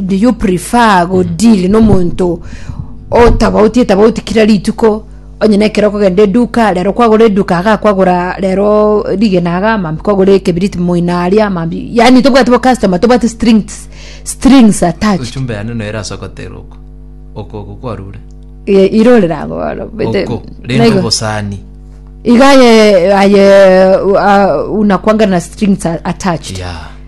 do you prefer go deal no monto otabauti etabauti kira rituko onye na ekero okogenda eduka rero kwagora eduka iga kwagora rero rigena iga mambi kwagora ekebiriti moino aria mambi yaani tobwate bo customer tobwate strings strings attached ochumbe yane noyo erasokotera oko oko oko kwarure Ye- irorera abo bono bete- oko rende naigo- obosani iga aye aye uh, unakwanga na strings a- attached yeah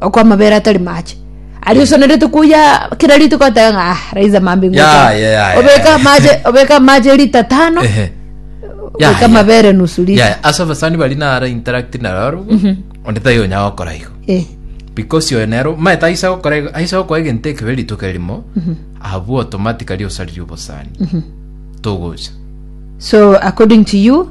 okwa amabere atari mache aria osonerete kuya kera rituko oteba ng'a ah, raise a man being Ya, watered." ya, ya, ya, obeka ya. amache obeka amache lita tano Ehe. Ya, obeka ya. amabere nusu lita Yeah, ase abasani bari nara interact naro onde taiyo onya gokora igo Eh, because oyo nero maete aise gokora igo aise gokora egento ekebe rituko erimo abwo automatically osaririe obosani togocha so according to you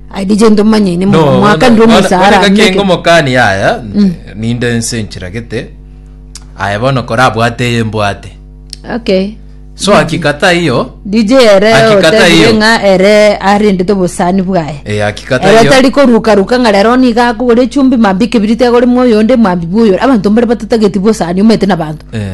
I did gento manye ine No, mwaka ndi bono- omosaara bono ngaki ameke. ngomokani yaya ninde nse nchiragete aya bono korabwate eye mbwate Okay. so akikata iyo DJ ere Akikata otebire iyo. ng'a ere arendete obosani bwaye. eh, akikata Ere iyo tari koruka ruka ng'a rero niga akogora echumbi mambia ekebiriti agore mwa oyonde mwambia bwa oyore. Abanto mbare batatageti bosani omanyete na abanto. eh,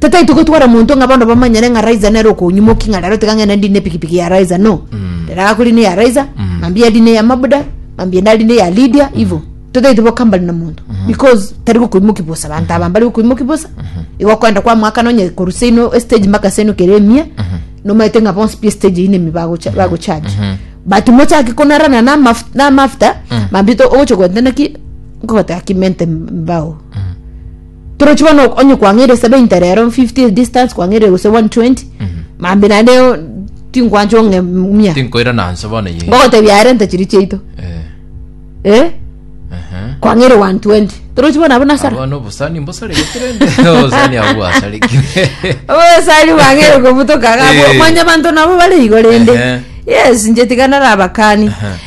Tataai togotwara monto ng'a bono bamanyere ng'a Raiza nere okonyumoki ng'a rero tiga ng'ende ndine epikipiki ya Raiza no. Rero agakora ine ya Raiza, mambia ari ine ya Mabuda, mambia nari ine ya Lydia, ivo. Tataai tibokambani na monto because tari gokoimoki bosa, abanto aba mbari gokoimoki bosa. Igo okoenda kwamoakana onye korwa seino estage mpaka seino kere emia, nomaete ng'a bonsi pi estage eyio nemia bagocha- bagocharge. But mochake konarana na amaf- na amafuta, mambia to- ogocha goteba naki, nkogoteba ki mente mbao. Torochi bono ok- onye kwang'eire 70 rero 50 is distance kwang'eire gose 120 mambi naende o- tinkwancha ong'e mia Tinkoirana nse bono ye. ngogotebia aye renta chiri chiaito Eh, eh aha. kwang'eire 120 torochi bono abo nasara Abana obosani mbosareke kirende. Obosani abo bwasareke. obosari bwang'eire kobutoka gabo Eh. manya abanto nabo bare igo rende Ehe. yes nche tiga narabakani Aha.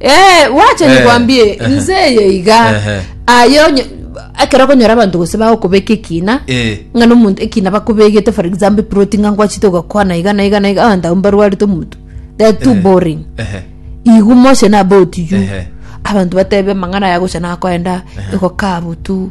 Eh, wacha Eh, nikwambie eh. nze eye iga Ehe. ayo nye- ekero okonyora abanto gose bagokobeka ekina Eh. ng'a nomonto ekina bakobegete for example proti ng'a ngwachete ogakwana iga na iga na iga abanto abwo mbarwarete omonto they are too boring Ehe. igu motion about you Ehe. abantu batebe amang'ana yagocha nakoenda egokabutu